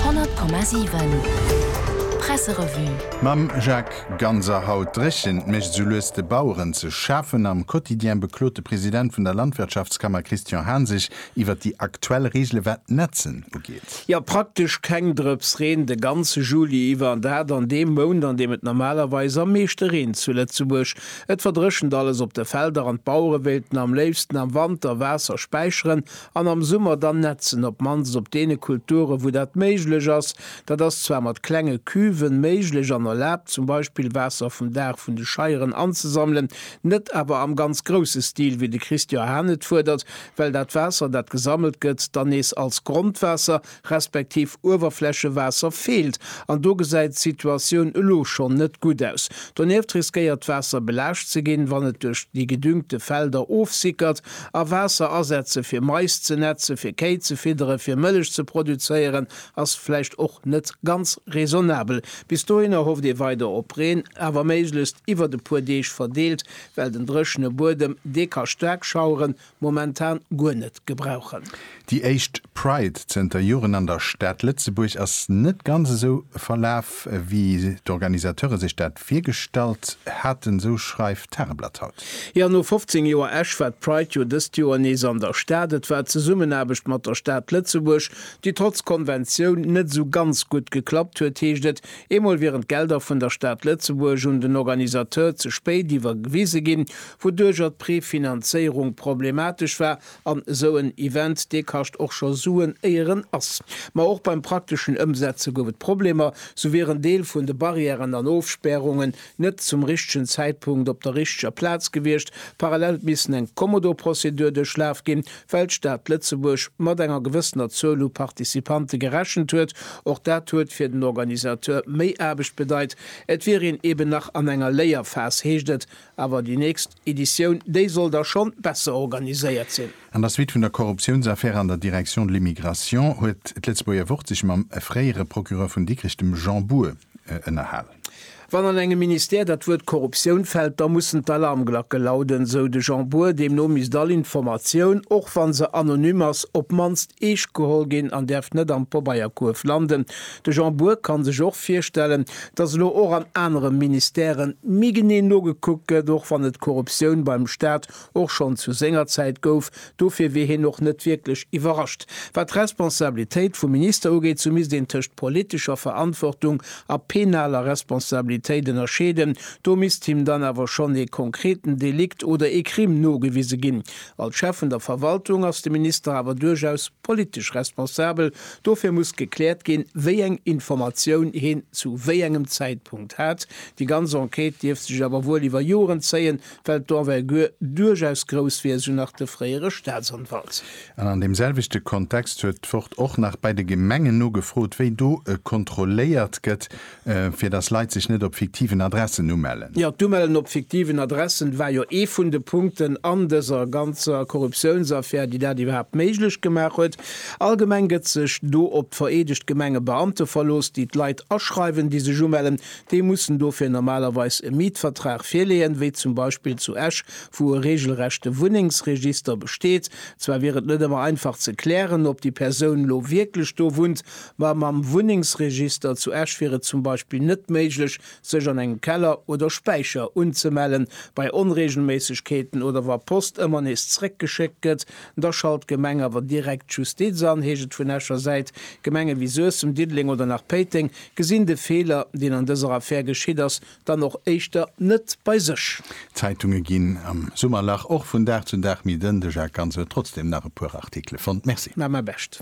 100,7 Presserevue. Mam Jacques Ganser Haut dréchent, mécht esou lues de Baueren ze schafen. Am Quotidien beklot de President vun der Landwirtschaftskammer Christian Hahn sech iwwer déi aktuell Reegele wat d'Netzen ugeet. Jo, praktesch keng Drëps Reen de ganze Juli iwwer an dat an deem Mount, an deem et normalerweis am meeschte reent zu Lëtzebuerg. Et verdréchent alles op de Felder an d'Bauere wéilten am léifsten am Wanter Waasser späicheren An am Summer dann nätzen, op mannst op deene Kulturen, wou dat méiglech ass. Dat ass zwar mat klenge Cuven méiglech an erlaabt, zum Beispill Waasser vum Daach vun de Scheieren anzesammelen, net awer am ganz grousse Stil, wéi de Christian Hahn et fuerdert, well dat Waasser, dat gesammelt gëtt, dann nees als Grondwaasser, respektiv Uewerflächewaasser feelt, an do gesäit d'Situatioun elo schonn net gutt aus. Donieft riskéiert d'Waasser belaascht ze ginn, wann et duerch déi gedüngte Felder ofsickert, a Waasser asetze fir Mais ze netze fir Kéi ze fiddere fir Mëllech ze produzéieren ass vläicht och net ganz raisonnabel. Bis dohinner hofft ee weider op Reen, awer méiglechst iwwert e puer Deeg verdeelt, well den dréchene Buedem dee ka staark Schaueren Momentan guer net gebrauchen. Déi éischt Pride zënter Joren an der Stad Lëtzebuerg ass net ganz esou verlaf, wéi d'Organisateure sech dat virgestallt haten, esou schreift d'Tageblatt haut. Jo, no 15 Joer Esch war d'Pride jo dëst Joer nees an der Stad. Et war d'Zesummenaarbecht mat der Stad Lëtzebuerg, déi trotz Konventioun net esou ganz gutt geklappt huet, heescht et. Eemol wieren d'Gelder vun der Stad Lëtzebuerg un den Organisateur ze spéit iwwergewise ginn, wouduercher d'Préfinanzéierung problematesch war, an esou en Event, dee kascht och scho Suen, éier en ass. Ma och beim prakteschen Ëmsetze gouf et Problemer, sou wier en Deel vun de Barrièren an Ofspärungen net zum richtegen Zäitpunkt op der richteger Plaz gewiescht, parallel et missen eng Kommodo-Prozedur duerchlaf ginn, well d'Stad Lëtzebuerg mat enger gewëssener Zuel u Participante gerechent huet. Och dat huet fir den Organisateur méi Aarbecht bedeit, et wier een eben nach an enger Léierphas, heescht et Awer déi nächst Editioun, déi soll da schonn besser organiséiert sinn. An der Suite vun der Korruptiounsaffär an der Direction de l'Immigration huet d'Lëtzebuerger Wort sech mam fréiere Procureur vun Dikrech, dem Jean Bour, ënnerhal. Wann an engem Ministère dat Wuert Korruptioun fält, da mussen d'Alarmglacke lauden, sou de Jean Bour. Deemno misst all Informatioun, och wa se anonym ass, op d'mannst eescht geholl ginn an däerf net am Pobeierkuerf landen. De Jean Bour ka sech och virstellen, datt elo och an anere Ministèrë méi genee nogekuckt gëtt, och wann et Korruptioun beim Staat och schonn zu senger Zäit gouf. Dofir wier hien och net wierklech iwwerrascht. Wat d'Responsabilitéit vum Minister ugeet, sou misst een tëscht politescher Verantwortung a penaler Responsabilitéit ënnerscheeden. Do misst him dann awer schonn ee konkreten Delikt oder ee Crime nogewise ginn. Als Chef vun der Verwaltung ass de Minister awer duerchaus. politesch Responsabel, dofir muss gekläert ginn, wéi eng Informatioun heen zu wéi engem Zäitpunkt hat. Déi ganz Enquête dierft sech awer wuel iwwer Joren zéien, well d'Envergure duerchaus grouss wier, esou nach de fréiere Staatsanwalt. An an deem selwechte Kontext huet d'Wort och nach bei de Gemengen nogefrot, wéi do kontrolléiert gëtt, Fir dass Leit sech net op fiktiven Adressen umellen. Jo, d'Umellen op fiktiven Adressen war jo ee vun de Punkten an dëser ganzer Korruptiounsaffär, déi dat iwwerhaapt méiglech gemaach huet. Allgemeng gëtt sech do op d'vereedegt Gemengebeamte verlooss, déi d'Leit aschreiwen, déi sech umellen. Déi mussen dofir normalerweis e Mietvertrag virleeën, wéi zum Beispill zu Esch, wou e regelrechte Wunnengsregister besteet. Zwar wier et net ëmmer einfach ze klären, ob déi Persoun lo wierklech do wunnt, Ma mam Wunnengsregister zu Esch wier et zum Beispill net méiglech, sech an engem Keller oder Späicher unzemellen. Bei Onreegelméissegkeeten oder wa Post ëmmer nees zeréckgeschéckt gëtt, da schalt d'Gemeng awer direkt d'Justiz an, heescht et vun Escher Säit. Gemenge wéi Suessem, Diddeleng oder nach Péiteng gesinn de Feeler, deen an dëser Affär geschitt ass, dann och éischter net bei sech. D'Zeitunge ginn am Summerlach och vun Dag zu Dag méi dënn. De Jacques Ganz huet trotzdeem nach e puer Artikele fonnt. Merci. Mä mäi Bescht.